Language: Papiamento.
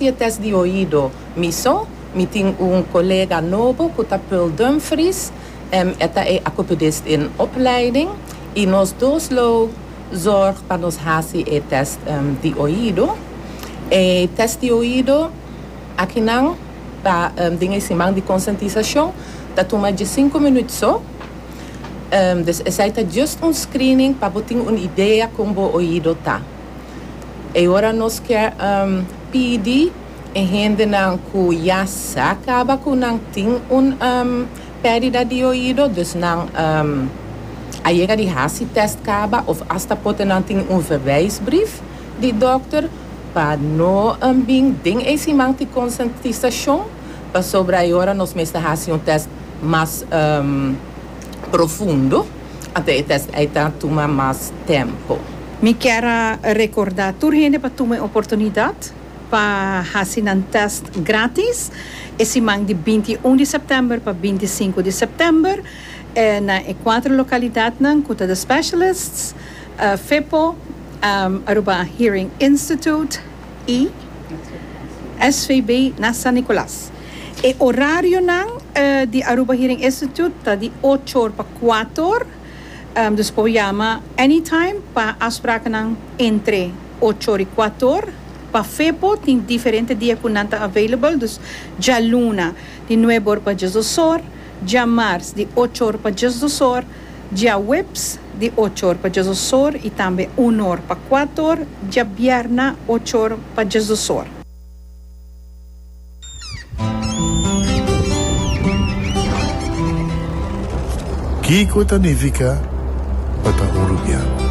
E test di oido. Miso, mi tin un colega nobo cu ta Pearl Dumfries, e ta e acopedist den opleiding, y nos dos lo zorg pa nos haci e test di oido. E test di oido akinan ta den e siman di conscientisacion, ta tuma diescinco minuut so, dus esai ta just un screening pa bo tin un idea con bo oido ta. E ora nos kier pidi e hendenan ku ya sa kaba ku nan tin un perdida di oido, dus nan a yega di hasi test kaba of asta pote nan tin un verwijsbrief di dokter pa no bin den e siman tin konsientisashon pasobra e ora nos mester hasi un test mas profundo. Anto e tèst ei ta tuma mas tempu. Mi kier a rekordá tur hende pa tuma e oportunidat pa hasi nan tèst grátis e siman di binti i un di sèptèmber pa binti i sinku di sèptèmber na e kuater lokalidatnan ku ta The Specialists, Fepo, Aruba Hearing Institute. y svb na San Nicolas. E orarionan di Aruba Hearing Institute ta di ocho or pa kuater or, dus por yama anytime pa afsprakennan entre ocho or y kuater or. Pa Fepo tin diferente dia ku nan ta available, dus djaluna di nuebe or pa diesdos or. djamars di ocho or pa djes dos or, djaweps di ocho or pa djes dos or i tambe un or pa kuat or, djabierna ocho or pa djes dos or. Kiko ta nifiká pa ta un rubian?